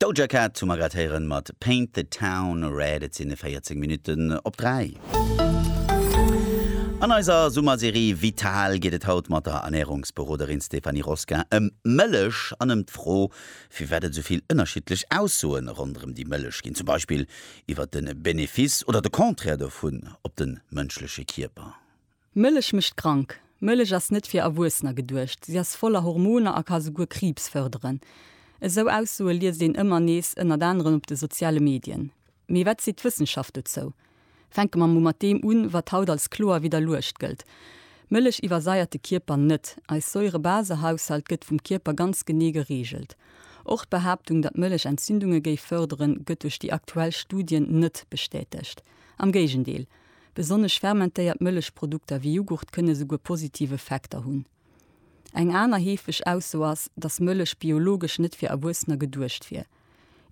Doja Cat hu mer grad héieren mat Paint the Town Red. Et sinn e 14 Minutten op 3. An eiser Summerserie Vital geet et haut mat der Ernährungsberoderin Stéphanie Rosquin ëm Mëllech an ëm d'Fro, firwat et souvill ënnerschiddlech Aussoe ronderëm déi Mëllech ginn, zum Beispill iwwert de Benefice oder de Contraire dovun op de mënschleche Kierper. Mëllech mécht krank. Mëllech ass net fir Erwuessener geduecht. Si ass voller Hormoner a ka souguer Kriibs fërderen. Esou Aussoe liest een ëmmer nees, ënnert anerem op de soziale Medien. Mee wat seet d'Wëssenschaft dozou? Fänke mer mol mat deem un, wat haut als kloer widderluecht gëllt, Mëllech iwwersaiert de Kierper net. Eis Säurebasehaushalt gëtt vum Kierper ganz genee gereegelt. Och d'Behaaptung, datt Mëllech Entzündunge géif fërderen, gëtt duerch déi aktuell Studien net bestätegt. Am Géigendeel, Besonnesch fermentéiert Mëllechprodukter wéi Jughurt kënne souguer positiv Effekter hunn. Eng aner heefeg Ausso ass, dass Mëllech biologesch net fir Erwuessener geduecht wier.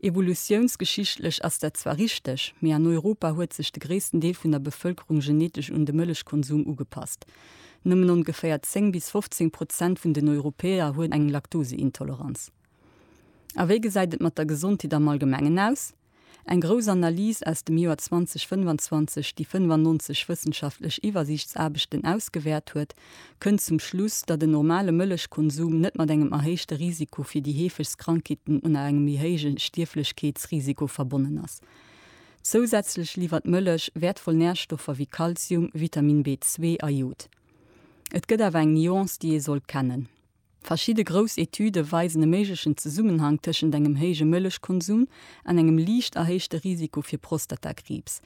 Evolutiounsgeschichtlech ass dat zwar richteg, mee an Europa huet sech de gréissten Deel vun der Bevëlkerung genetesch un de Mëllechkonsum ugepasst. Nëmmen ongeféier 10 bis 15 Prozent vun den Europäer hunn eng Laktoseintoleranz. A wéi gesäit et mat der Gesondheet am Allgemengen aus? Eng grouss Analys aus dem Joer 2025, déi 95 wëssenschaftlech Iwwersiichtsaarbechten ausgewäert huet, kënnt zum Schluss, datt en normale Mëllechkonsum net mat engem erhéichte Risiko fir déi heefegst Krankheeten un a engem méi héije Stierflechkeetsrisiko verbonnen ass. Zousätzlech liwwert Mëllech wäertvoll Närstoffer wéi Kalzium, Vitamin B2 a Jod. Et gëtt awer eng Nuance, déi ee sollt kennen. Verschidde grouss Etüde weisen e méiglechen Zesummenhang tëschent engem héije Mëllechkonsum an engem liicht erhéichte Risiko fir Prostatakriibs.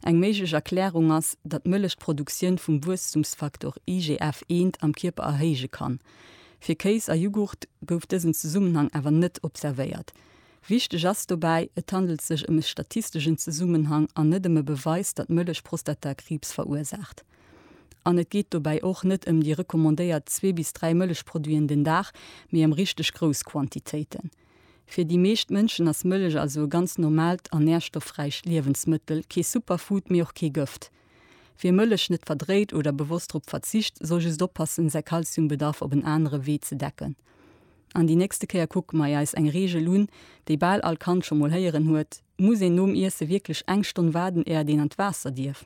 Eng méiglech Erklärung ass, datt d'Mëllech d'Produktioun vum Wuesstumsfaktor IGF eent am Kierper erhéije kann. Fir Kéis a Jughurt gouf dësen Zesummenhang awer net observéiert. Wichteg ass dobäi, Et handelt sech ëm e statisteschen Zesummenhang an net ëm e Beweis, datt Mëllech Prostatakriibs verursaacht. An et geet dobäi och net ëm déi recommandéiert zwee bis dräi Mëllechproduiten den Dag, mee ëm richteg grouss Quantitéiten. Fir déi meescht Mënschen ass Mëllech also e ganz normaalt an nährstoffräicht Liewensmëttel, kee Superfood, mee och kee Gëft. Wie Mëllech net verdréit oder bewosst drop verzicht, soll just oppassen, säi Kalziumbedarf op en anere Wee ze decken. An déi nächste Kéier kucke mei eis eng Reegel un, déi bal all Kand scho mol héieren huet, Muss een nom Iesse wierklech eng Stonn waarden, éiert een an d'Waasser dierf?